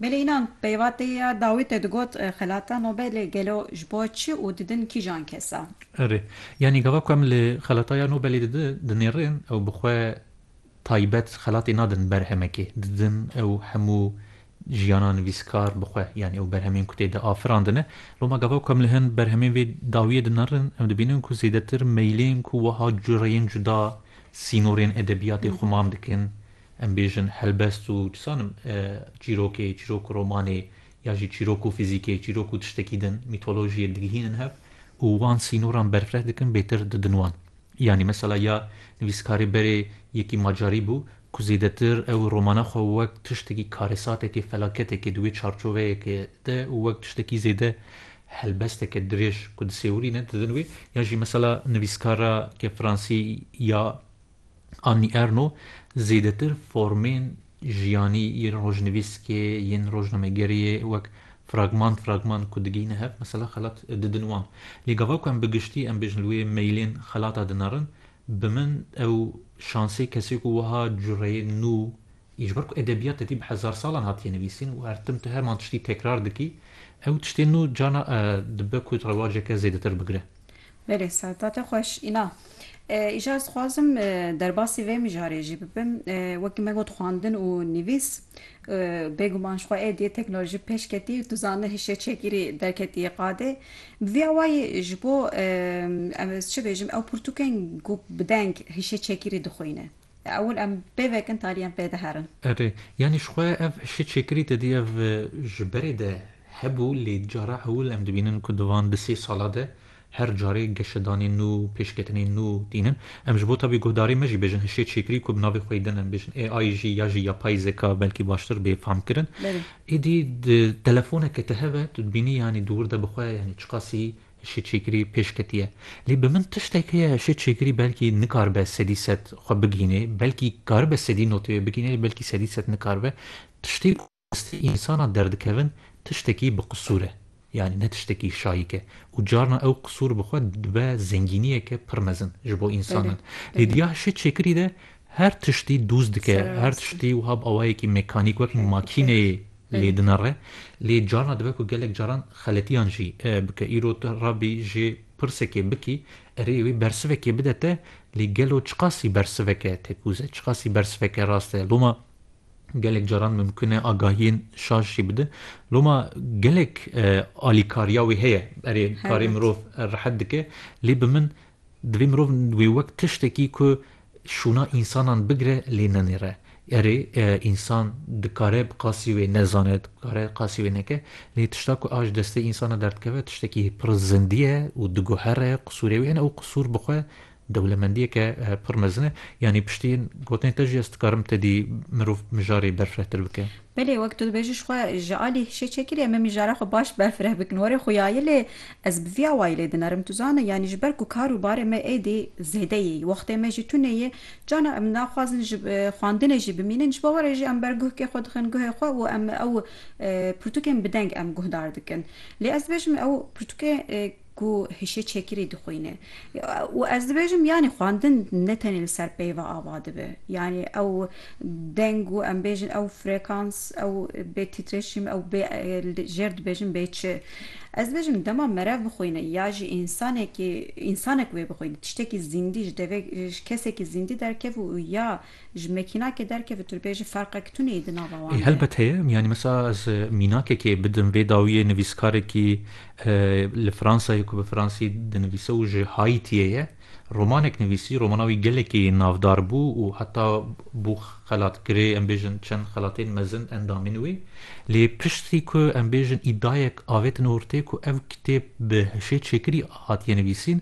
Belê înan peyva tê ya dawî te digot xelata no be lê gelo ji bo çi û didin kîjan kesan? Erê. Yanî gava ku em li xelata ya no belê de dinêrin ew bi xwe taybet xelatê nadin berhemekê. Didin ew hemû jiyana nivîskar bi xwe yanî ew berhemên ku tê de afirandine. Loma gava ku em li hin berhemên vê dawiyê de nerin em dibînin ku zêdetir meylên ku wiha cureyên cuda sînorên edebiyatê xumam dikin, Em bêjin helbest û çi zanim çîrokê, çîrok û romanê ya jî çîrok û fîzîkê, çîrok û tiştekî din, mîtolojiyê digihînin hev û wan sînoran berfireh dikin bêtir didin wan. Yanî mesela ya nivîskarê berê yekî macarî bû ku zêdetir ew romana xwe wek tiştekî karesatekê, felaketekê di wê çarçoveyekê de û wek tiştekî zêde helbesteke dirêj ku disêwirîne didin wê. Yan jî mesela nivîskara ke fransî ya. Annie Ernaux zêdetir formên jiyanî yên rojnivîskê yên rojnamegeriyê wek fragman fragman ku digihîne hev mesela xelat didin wan. Lê gava ku em bi giştî em bêjin li wê meylên xelata dinerin bi min ew şansê kesê ku wiha cureyê nû Ji ber ku edebiyat te tî bi hezar salan hatiye nivîsîn û her tim tu heman tiştî tekrar dikî, ew tiştên nû carna dibe ku rewaceke zêdetir bigire. Belê seta te xweş. Îna, îcar dixwazim derbasî vê mijarê jî bibim. Wekî me got xwendin û nivîs, bêguman ji xwe êdî teknolojî pêş ketî û tu zanî hişê çekîrî derketiye qadê. Bi vî awayî ji bo em ez çi bêjim ew pirtûkên ku bi deng hişê çekîrî dixwîne. Ewil em bê vekin tarî em pê diherin. Erê, yanî ji xwe ev hişê çêkirî te dî ev ji berê de hebû lê cara ewil em dibînin ku di van du sê sala de her carê geşedanên nû, pêşketinên nû tînin. Em ji bo tabî guhdarê me jî bêjin hişê çêkirî ku bi navê xwe yî din em bêjin AI jî ya jî yapayî zeka belkî baştir bê famkirin. Êdî di telefoneke te hebe tu dibînî yanî di wir de bi xwe yanî çiqasî Ji çêkirî pêş ketiye. Lê bi min tiştek heye ji çêkirî belkî nikaribe sedî sed xwe bigihînê. Belkî karibe sedî notê wê bigihînê lê belkî sedî sed nikaribe. Tiştê ku bi destê însanan derdikevin tiştekî bi qisûr e. Yanî ne tiştekî şayîk e. Û carna ew qisûr bi xwe dibe zengîniyeke pir mezin ji bo însanan. Lê diya ji çêkirî de Her tiştî dûz dike, her tiştî wiha bi awayekî mekanîk wek makîneyê lê dinere. Lê carna dibe ku gelek caran xeletiyan jî bike. Îro tu rabî jê pirsekê bikî, erê wê bersivekê bide te, lê gelo çiqasî bersiveke tekûz e, çiqasî bersiveke rast e. Loma gelek caran mimkun e agahiyên şaş jî bide. Loma gelek alîkariya wê heye. Erê karê mirov rehet dike, lê bi min Divê mirov wê wek tiştekî ku şûna însanan bigire lê nenêre. Erê, însan dikare bi qasî wê nezane, dikare qasî wê neke, lê tişta ku a ji destê însana derdikeve tiştekî pir zindî ye û diguhere qisûrê wê. Ene ew qisûr bi xwe dewlemendiyeke pir mezin e. Yanî piştî gotinê te jî ez dikarim tedî mirov mijarê berfirehtir bikim. Belê wek tu dibêjî ji xwe ji alî hişê çêkirî em ê mijara xwe baş berfireh bikin were xuyayê lê ez bi vî awayî lê dinerim tu zana yanî ji ber ku kar û barê me êdî zêde yê wextê me jî tune yê cana em naxwazin ji xwandinê jî bimînin ji bo were jî em ber guhkê xwe dixin guhê xwe û em ew pirtûkên bi deng em guhdar dikin lê ez dibêjim ew pirtûkê ku hişê çekirî dixwîne û ez dibêjim yanî xwendin ne tenê li ser peyva ava dibe yanî ew deng û em bêjin ew frekans ew bê tîtreşîm ew bê li jêr dibêjin bê çi ez dibêjim dema merev bixwîne ya jî însanekî însanek wê bixwîne tiştekî zîndî ji devê ji kesekî zîndî derkeve û ya Ji mekînakê derkeve tu dibêjî ferqek tune yî di nava wan de. Ê helbet heye, yanî mesela ez mînakekê bidim vê dawiyê nivîskarekî li Fransayê ku bi fransî dinivîse û ji Haîtiyê ye romanek nivîsî, romana wî gelekî navdar bû û heta bû xelatkirê em bêjin çend xelatên mezin endamîn wî lê piştî ku em bêjin îdayek avêtin ortê ku ev kitêb bi hişê çêkirî hatiye nivîsîn,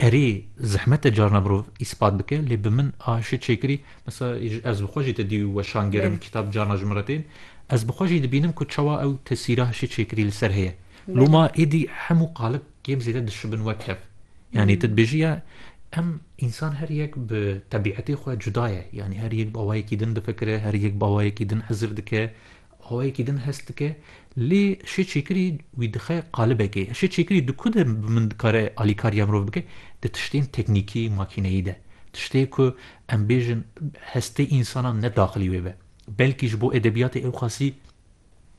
Erê, zehmet e carna mirov îspat bike lê bi min a şi çêkirî, mesela ez bi xwe jî ti dî û weşan gerim kitap carna ji min re tên, ez bi xwe jî dibînim ku çawa ew tesîra şi çêkirî li ser heye. Loma êdî hemû qalib kêm zêde dişibin wek hev. Yanî tu dibêjî ya em însan her yek bi tebîetê xwe cuda ye. Yanî her yek bi awayekî din difikire, her yek bi awayekî din hizir dike. Xweyekî din hest dike lê şê çêkirî wî dixe qalibekê. Şê çêkirî di ku de bi min dikare alîkariya mirov bike? Di tiştên teknîkî, makîneyî de. Tiştê ku em bêjin hestê însanan ne daxilî wê be. Belkî ji bo edebiyatê ewqasî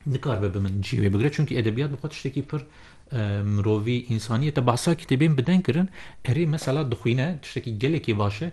nikaribe bi min cî wê bigire çunkî edebiyat bi xwe tiştekî pir mirovî, însaniyete. Behsa kitêbên bi deng kirin, erê mesela dixwîne tiştekî gelekî baş e.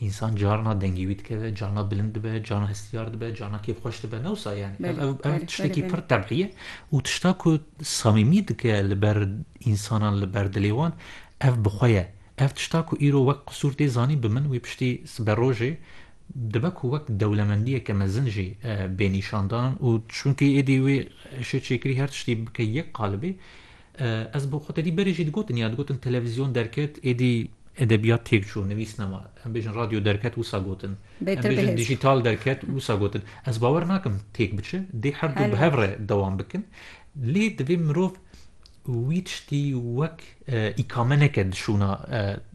Însan carna dengê wî dikeve, carna bilind dibe, carna hestiyar dibe, carna kêfxweş dibe. Ne wisa yani. Ev, ev, ev tiştekî pir tebî ye û tişta ku samîmî dike li ber însanan, li ber dilê wan ev bi xwe ye. Ev tişta ku îro wek qisûr tê zanîn bi min wê piştî siberojê dibe ku wek dewlemendiyeke mezin jî bê nîşandan û çunkî êdî wê şêçêkirî her tiştî bike yek qalibê, Ez bo xwe tedî berê jî digotin ya digotin televîzyon derket êdî edebiyat têk çû nivîs nema. Em bêjin radyo derket wisa gotin. Em bêjin dijital derket wisa gotin. Ez bawer nakim têk biçe dê her du bi hev re dewam bikin. Lê divê mirov wî tiştî wek îkame neke di şûna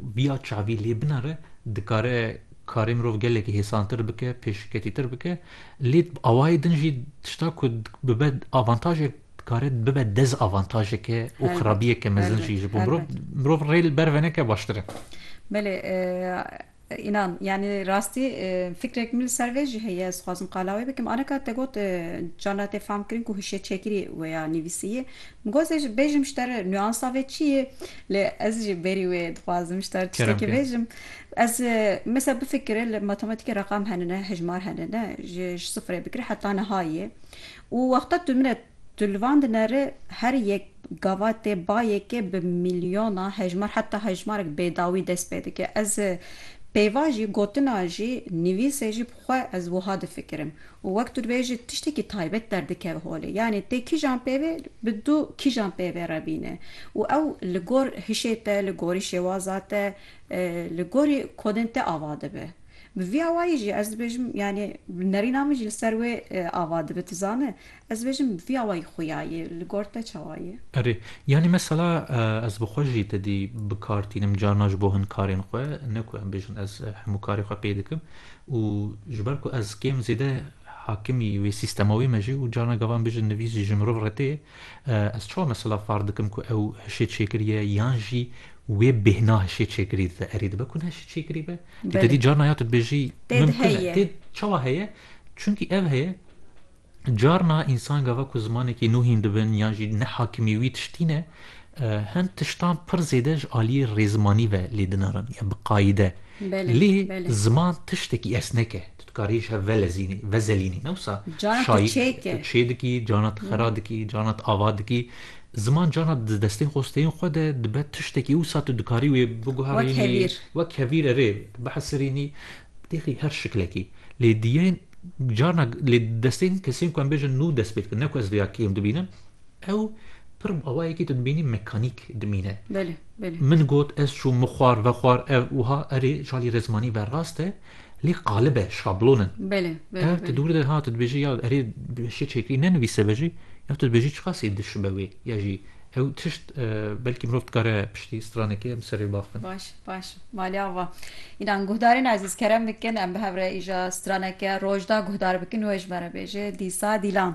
Biya çavî lê binare dikare karê mirov gelekî hêsantir bike, pêşketîtir bike. Lê bi awayê din jî tişta ku bibe avantajek dikare bibe dezavantajeke û xirabiyeke mezin jî ji bo mirov. Mirov rê li ber veneke baştir e. Belê Înan, yanî rastî fikrek min li ser vê jî heye, ez dixwazim qala wê bikim. Aneka te got carna tê famkirin ku hişê çekirî wê ya nivîsî yê. Min got ez jî bêjim ji te re nuansa vê çi yê. Lê ez jî berî wê dixwazim ji te re tiştekî bêjim. Ez mesela bifikire li matematîkê reqam hene ne, hejmar hene ne, ji sifirê bigire heta niha yê. Û wexta tu min re tu li van dinere her yek, Gavatê bayekê bi mîlyona hejmar heta hejmarek bêdawî dest pê dike. Ez pêva jî gotina jî nivîsê jî bi xwe ez wiha difikirim û wek tu dibêj jî tiştekî taybet derdikeve holê. Yanî tê kîjan pêvê bi du kîjan pêvê re bîne û ew li gor hişê te, li gorî şêwaza te, li gorî kodên te ava dibe. Bi vî awayî jî ez dibêjim yanî bi nerîna min jî li ser wê ava dibe. Tu zane Ez dibêjim vî awayî xuya yê, li gor te çawa yê? Erê, yanî mesela ez bi xwe jî tedî bi kar tînim carina ji bo hin karên xwe, ne ku em bêjin ez hemû karê xwe pê dikim û ji ber ku ez kêm zêde hakimî wê sîstema wê me jî û carina gava em bêjin nivîs jî ji mirov re tê, ez çawa mesela far dikim ku ew hişê çêkiriye yan jî wê bêhna hişê çêkirî dide? Erê, dibe ku ne hişê çêkirî be? Tu tedî carina ya tu dibêjî mimkun e, tê çawa heye? Çimkî ev heye. Carna însan gava ku zimanekî nû hîn dibin yan jî nehakimî wî tiştî ne, hin tiştan pir zêde ji aliyê rêzmanî ve lê dinarin ya bi qayîde. Lê ziman tiştekî esnek e. Tu dikarî ji hev velezînî, vezelînî ne wisa şayî tu çê dikî, carna tu xera dikî, carna tu ava dikî. Ziman carna di destên xwesteyên xwe de dibe tiştekî wisa tu dikarî wê biguherînî wek hevîr erê bihesirînî bidêxî her şiklekî. Lê diyên Carna lê destên kesên ku em bêjin nû dest pê dikin ne ku ez vêya kêm dibînim ew pir awayekî tu dimînî mekanîk dimîne. Belê, belê. Min got ez çûm min xwar ve xwar ev wiha erê çalî rezmanî ve rast e lê qalib e şablon in. Belê, belê. Ev tu dûr de ha tu dibêjî ya erê şê çêkirî nenivîse ve jî ya tu dibêjî çiqas ê diş be wê ya jî ew tişt belkî mirov dikare piştî stranekê em serê baxin. Baş. Baş e. Malê ava. Înan guhdarên ezîz kerem bikin em bi hev re îja straneke rojda guhdar bikin wê ji me re bêje dîsa dîlan.